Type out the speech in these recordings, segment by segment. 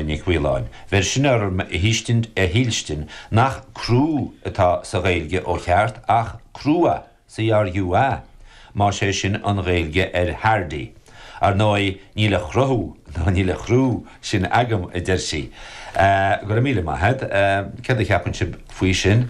Nic Mhaoláin. Bheir sin orm a thuiscint, a shílstin, nach 'crú' atá sa Ghaeilge ó cheart ach 'crua', CRUA, más é sin an Ghaeilge ar 'hardy'. Ar ndóigh, níl a chruthú ná níl a chrú sin agam, a deir sí. Go raibh míle maith agat. Céard a cheapann sibh faoi sin?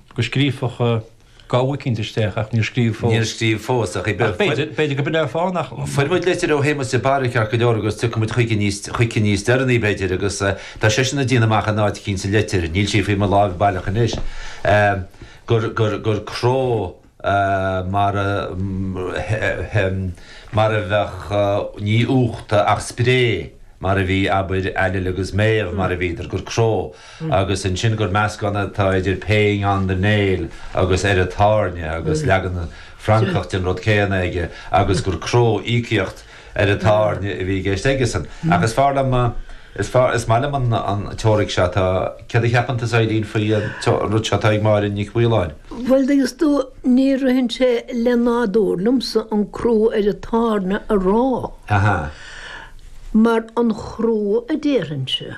go scríobfadh gabha eicínt isteach ach níor scríobh fós. Níor scríobh fós ach b'fhéidir go mbeidh fáth nach. Fuair muid litir ó Shéamus de Barra ceart go leor agus tiocfaidh muid chuici níos deireanaí b'fhéidir agus tá seisean ag déanamh amach in áit eicínt sa litir, níl sí faoi mo láimh baileach anois, gur cró. mar a bheadh ní uachta ach spré mar a bhí, abair, Ailill agus Méabh mar a bhíodar, gur cró agus ansin gur meascán atá idir paying on the nail agus ar an tairne agus leagan Francach den rud céanna aige agus gur cró íocaíocht ar an tairne a bhí i gceist aigesan. Ach is fearr liom, is fearr, is maith liom an teoiric seo atá, céard a cheapann tusa Eileen faoi an rud seo atá ag Máire Nic Mhaoláin? Bhuel thuigeas tú, ní ritheann sé le nádúr liomsa an crú ar an tairne a rá, mar an chrú a déarfainnse.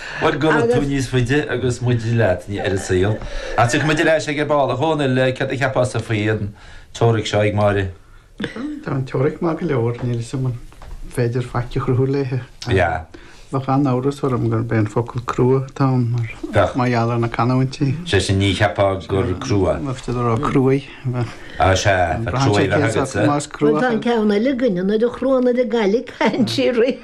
Bhuel, gura tú níos faide agus muide leat ar an saol. Ach tiocfaidh muid ar ais aige ar ball. A Dhónaill, céard a cheapfása faoi an teoiric seo ag Máire? Tá an teoiric maith go leor, níl 'fhios a'm an féidir faic a chruthú léithe. Yeah. Bheadh an-amhras orm gurb é an focal crua atá ann mar Bheadh. mar gheall ar na canúintí. Sé sin, ní cheapfá gur crua. Mhothaítear a rá cruaidh. Ah, sea, tá crua agatsa. Más Bhuel, crua. tá an ceann eile againne, nuair a chruann ar an gcailligh, caitheann sí rith.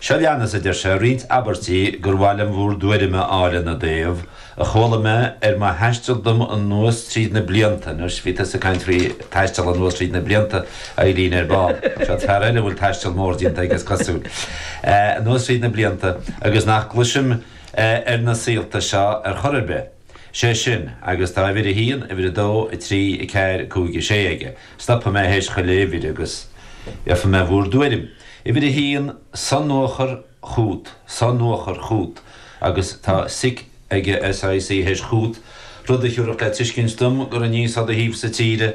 Seo leanas a deir sé, roinnt abairtí gur mhaith liom bhur dtuairim a fháil ina dtaobh, a chuala mé ar mo thaisteal dom anuas tríd na blianta, anois bhí tusa ag caint faoi taisteal anuas tríd na blianta, a Eileen, ar ball, seo fear eile a bhfuil taisteal mór déanta aige is cosúil, anuas tríd na blianta, agus nach gcloisim ar na saolta seo ar chor ar bith. sé sin agus tá uimhir a haon, uimhir a dó, a trí, a ceathair, a cúig, a sé aige. Stopfaidh mé théis chuile uimhir agus iarrfaidh mé bhur dtuairim. Uimhir a haon, sonuachar chút, sonuachar chút, agus tá sic aige, SIC, théis chút, rud a thiúrfadh le tuiscint dom gur aníos ó do thaobhsa tíre,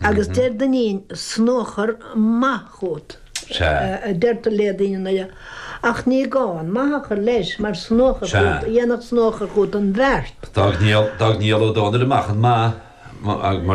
agus deir Duinnín, snuachar maith chugat, a deirtear le daoine in Doire, ach ní gá an maith a chur leis, mar snuachar chugat, dhéanfadh snuachar chugat an bheart. D'fhág Niall Ó Dónaill amach an maith, mar.